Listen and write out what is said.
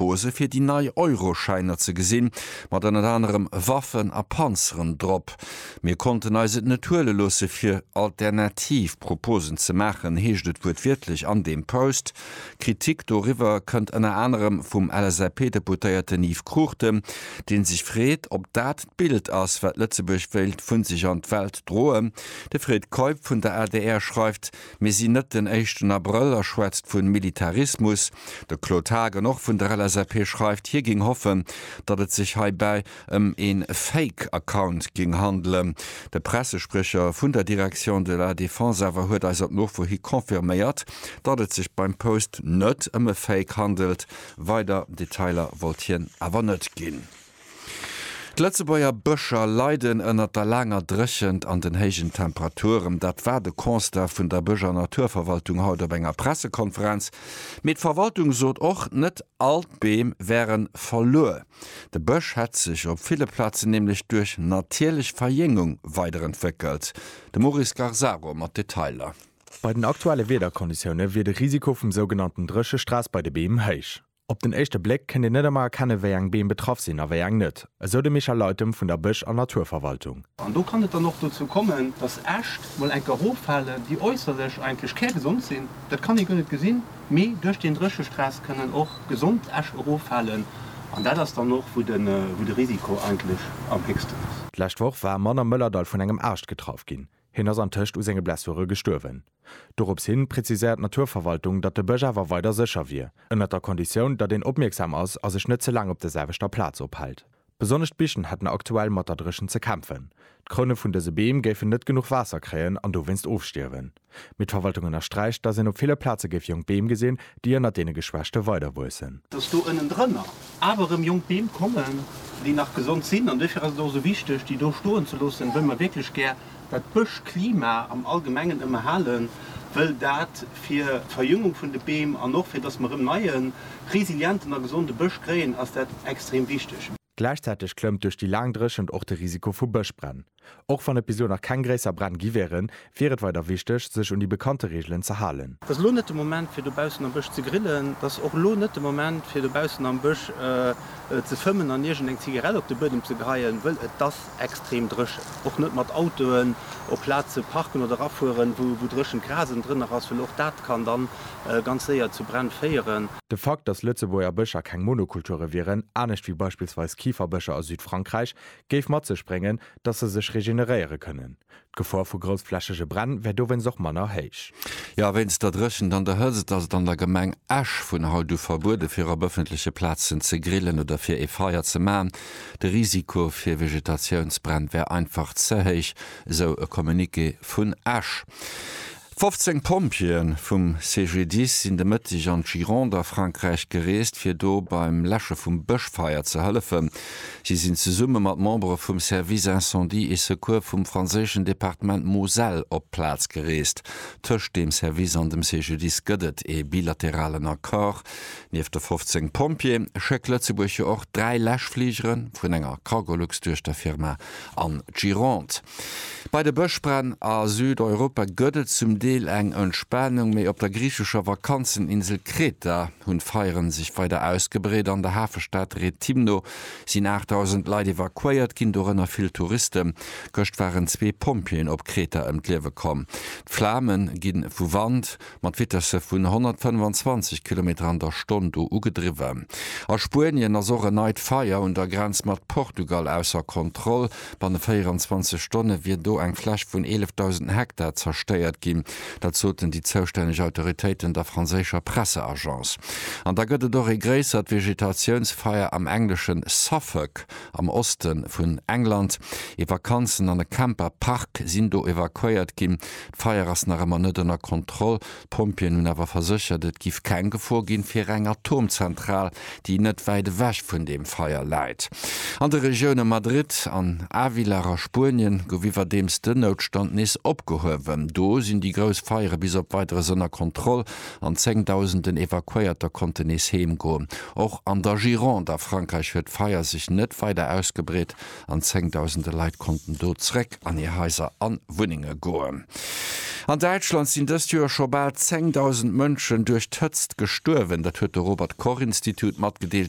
Hose fir déi nei Euroschäiner ze gesinn, mat ënnert anerem Waffen a Panzeren drop. Mir konnten eis et net huele loosse fir alternativ Proposen ze maachen, heescht et wuertwiertlech an deem Post. Kritik doriwwer kënnt ënner anerem vum LSAP-Deputéierten Yves Cruchten, dee sech freet, ob dat d'Bild ass, wat Lëtzebuerg wéilt vu sech an d'Welt droen. De Fred Keup vun der adr schreift, Mir sinn net den éischten Abrëll a schwätzt vun Militarismus. De Claude Haagen, och vun der LSAP, schreift, hie géing hoffen, datt et sech heibäi ëm e Fake Account géing handelen. De Pressespriecher vun der Direction de la Défense awer huet eis op Nofro hi confirméiert, datt et sech beim Post net ëm e Fake handelt. Weider Detailer wollt hien awer net ginn. D'Lëtzebuerger Bëscher leiden ënnert der laanger Dréchent an den héijen Temperaturen. Dat war de Constat vun der Bësch a Naturverwaltung haut op enger Pressekonferenz. Mee d'Verwaltung sot och, net all d'Beem wären verluer. De Bësch hätt sech op ville Plazen nämlech duerch natierlech Verjéngung weiderentwéckelt. De Maurice Garzaro mat Detailer. Bei den aktuelle Wiederkonditioune wier de Risiko vum sougenannten Dréchestress bei de Beem héich. Op den éischte Bléck kënnt een net ëmmer erkennen, wéi eng Beem betraff sinn a wéi eng net, esou de Michel Leytem vun der Bësch an Naturverwaltung. An do kann et dann och dozou kommen, dass Äscht mol enker eroffalen, déi äusserlech eigentlech kärgesond sinn, dat kann ee guer net gesinn, mee duerch deen Dréchestress kënnen och gesond Äscht eroffalen. An dat ass dann och, wou de Risiko eigentlech am héchsten ass. D'lescht Woch war Mann am Mëllerdall vun engem Aascht getraff ginn. Hien ass antëscht u senge Blessure gestuerwen. Dorops hin präziséiert d'Naturverwaltung, datt de Bësch awer weider sécher wier, ënnert der Konditioun, datt een opmierksam ass a sech net ze laang op der selwechter Plaz ophält. Besonnesch d'Bichen hätten aktuell mat der Dréchent ze kämpfen. D'Kroune vun dëse Beem géifen net genuch Waasser kréien an dowéinst ofstierwen. Mee d'Verwaltung ënnersträicht, datt een op ville Plaze géif jonk Beem gesinn, déi ënnert deene Geschwächte weiderwuessen. Datt do ënnendrënner awer erëm jonk Beem kommen, déi nach gesond sinn. An duerfir ass et och esou wichteg, déi do stoen ze loossen, wëll mer wierklech gär dat Bëschklima am Allgemengen ëmmerhalen, wëll dat fir d'Verjüngung vun de Beem an och fir datt mer erëm neie, resilienten a gesonde Bësch kréien, ass dat extrem wichteg. Gläichzäiteg klëmmt duerch déi laang Dréchent och de Risiko vu Bëschbränn. Och wann et bis elo nach keng gréisser Bränn gi wieren, wier et weider wichteg, sech un déi bekannte Reegelen ze halen. Et ass elo net de Moment fir dobaussen am Bësch ze grillen. Et ass och elo net de Moment fir dobaussen am Bësch ze fëmmen an iergend eng Zigarett op de Buedem ze geheien, wëll et ass extrem dréchen. Och net mat Autoen op Plaze parken oder erafueren, wou dréchent Gras ënnendrënner ass, wëll och dat kann dann ganz séier zu Bränn féieren. De Fakt, datt Lëtzebuerger Bëscher keng Monokulture wieren, anescht wéi beispillsweis Kiferbëscher a Südfrankräich, géif mat sech bréngen, datt se sech regeneréiere kënnen. D'Gefor vu groussflächege Bränn wär dowéinst och manner héich. Jo, wéinst der Dréchent an der Hëtzt ass et an der Gemeng Esch vun haut u verbuede fir op ëffentleche Plazen ze grillen oder fir ee Feier ze maachen. De Risiko fir Vegetatiounsbränn wär einfach ze héich, esou e Communiqué vun Esch. 15 Pompjeeë vum CGDIS sinn de Mëtteg an d'Gironde a Frankräich gereest, fir do beim Läsche vum Bëschfeier ze hëllefen. Si sinn zesumme mat Membere vum Service Incendie et Secours vum franséischen Departement Moselle op d'Plaz gereest. Tëscht deem Service an dem CGDIS gëtt et ee bilateralen Accord. Nieft de 15 Pompjeeë schéckt Lëtzebuerg jo och dräi Läschfligeren vun enger Cargolux-Duechterfirma an d'Gironde. Bei de Bëschbränn a Südeuropa gëtt et zum Deel eng Entspanung, mee op der griichescher Vakanzeninsel Kreta hu Feiere sech weider ausgebreet. An der Hafestad Rethymno sinn 8.000 Leit evakuéiert ginn, dorënner vill Touristen. Gëscht waren zwee Pompjeeën op Kreta ëm d'Liewe komm. D'Flame gi vu Wand mat Vitesse vun 125 Kilometer an der Stonn do ugedriwwen. A Spuenien ass och en neit Feier un der Grenz mat Portugal ausser Kontroll. Banne 24 Stonne wier do eng Fläch vun 11.000 Hektar zerstéiert ginn. Dat soten déi zoustänneg Autoritéiten der franséischer Presseagence. An da gëtt et och ee gréissert Vegetatiounsfeier am englesche Suffolk, am Oste vun England. Ee Vakanzen an e Camper-Park sinn do evakuéiert ginn. D'Feier ass nach ëmmer net ënner Kontroll. D'Pompjeeën hunn awer verséchert, et giff keng Gefor ginn fir eng Atomzentral, déi net wäit ewech vun deem Feier läit. An de Regioune Madrid an Ávila a Spuenien gouf iwwerdeems den Noutstand nees opgehuewen. Do sinn déi grouss Feiere bis op Weideres ënner Kontroll an zéngdausenden Evakuéierter konnten nees heem goen. Och an der Gironde a Frankräich huet d'Feier sech net weider ausgebreet. an zéngdausende Leit konnten do zréck an hir Haiser an Wunnenge goen. An Däitschland sinn dëst Joer scho bal zéngdausend Mënschen duerch d'Hëtzt gestuerwen. Dat huet de Robert Koch Institut matgedeelt.